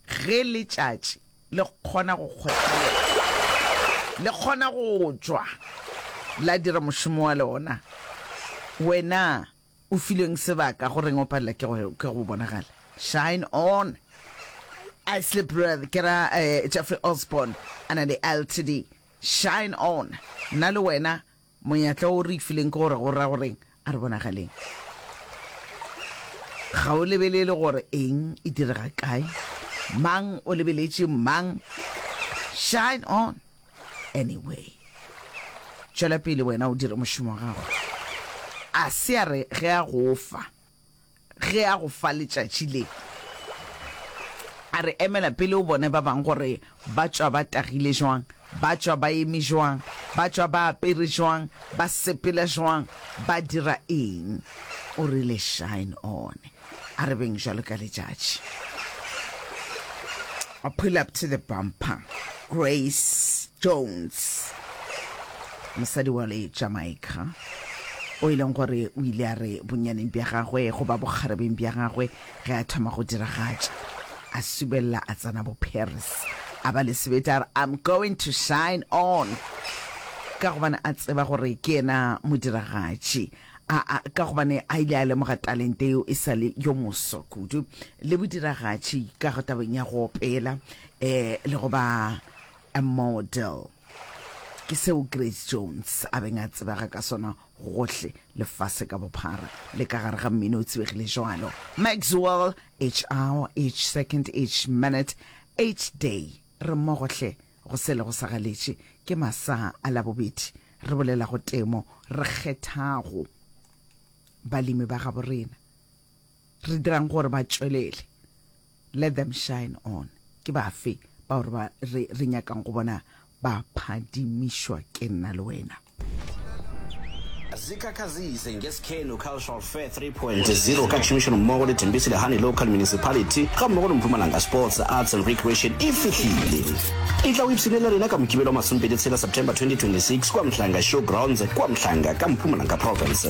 Ge letšatši le kgona go kgothaletša, le kgona go tšwa la dira mošomo wa lona, wena o filweng sebaka, go reng o palela ke go, ke go bonagala? Shine on! Ashley Brother, ke ra eh, Jeffrey Osborne, a na le LTD. Shine on! Nna le wena Monyatla o re fileng ke gore go ra goreng? A re bonagaleng. Ga o lebelele gore eng e direga kae, mang o lebeletše mang. Shine on anyway. Tšwela pele wena o dire mošomo wa gago. A se a re ge a go fa. ge a go fa letšatši le, a re, Emela pele o bone ba bang gore ba tšwa ba tagile jwang, ba tšwa ba eme jwang, ba tšwa ba apere jwang, ba sepela jwang, ba dira eng. O rile, Shine on. A re beng bjalo ka letšatši. I pull up to the bumper. Grace Jones, mosadi wa le Jamaica, o e leng gore o ile a re bonnyaneng bja gagwe goba bokgarebeng bja gagwe ge a thoma go diragatša, a subelela a tsena boParis, a ba le sebete a re, I'm going to shine on, ka gobane a tseba gore ke yena modiragatši. A, a, ka gobane a ile a lemoga talente yeo e sa le yo moswa kudu, le bodiragatši ka go tabeng ya go opela, e, le go ba a model. Ke seo Grace Jones a beng a tsebega ka sona gohle lefase ka bophara, le ka gare ga mmino o tsebegile jwalo, Maxwell, each hour, each second, each minute, each day, re mmogo hle. Go se lego sa galetše ke masaa a Labobedi. Re bolela go temo re kgethago balemi ba gabo rena. Re dirang gore ba tšwelele. Let them shine on. Ke bafe bao re nyakang go bona ba phadimišwa ke nna le wena? Zikhakhazise ngeSikhenu Cultural Fair 3.0 ka tšhomišanommogo le Tembisi Lehane Local Municipality ga mmogo le Mpumalanga Sports, Arts and Recreation e fihlile. E tla o ipshine le rena ka Mokibelo wa masomepedi tshela September 2026 kua Mhlanga Showgrounds kua Mhlanga ka Mpumalanga Province.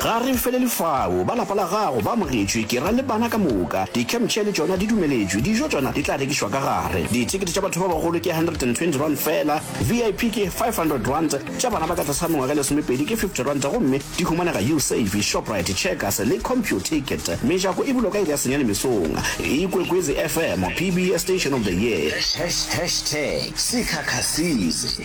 Ga re felele fao. Ba lapa la gago ba amogetšwe, ke ra le bana ka moka. Di-campchair le tšona di dumeletšwe. Dijo tšona di tla rekišwa ka gare. Dithekete tša batho ba bagolo ke R120 feela, VIP ke R500, tša bana ba ka tlase ga mengwaga e lesomepedi ke R50 gomme di humanega Usave, Shoprite, Checkers le Computicket. Mejako e bulwa ka iri ya senyane mesong. Ikwekwezi FM, PBS Station of the Year. Hashtag Sikhakha Size.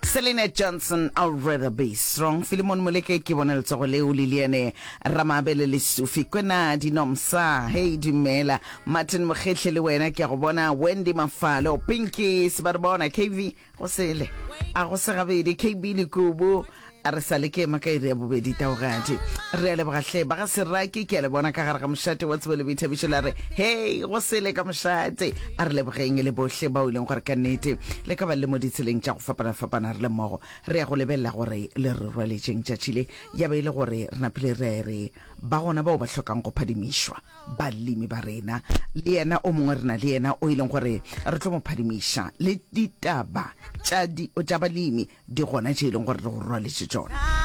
Selina Johnson, I'll rather be strong. Filimon Moleke, Ke bone letsogo leo. Liliane Ramabele, Lesufi kwena dinomsa. Hei dumela. Martin Mokgehle, le wena ke a go bona. Wendy Mafalo, Pinky se ba re bona. KV, go sele. A go se gabedi. KB Lekubu, a re sa le ke ema ka iri ya bobedi taogadi. Re a leboga hle. Ba ga Seraki, ke a le bona ka gare ga mošate wa tsebo le boithabišo la re, Hei go sele ka mošate. A re lebogeng e le bohle bao e leng gore ka nnete le ka ba le mo ditseleng tša go fapana-fapana re le mmogo. Re ya go lebelela gore le re rwaletšeng tšatši le. Ya ba e le gore re napile re ya re ba gona bao ba hlokang go phadimišwa, balemi ba rena, le yena o mongwe re na le yena o e leng gore re tlo mo phadimiša, le ditaba tša, tša balemi di gona tše e leng gore re go rwaletše tšona.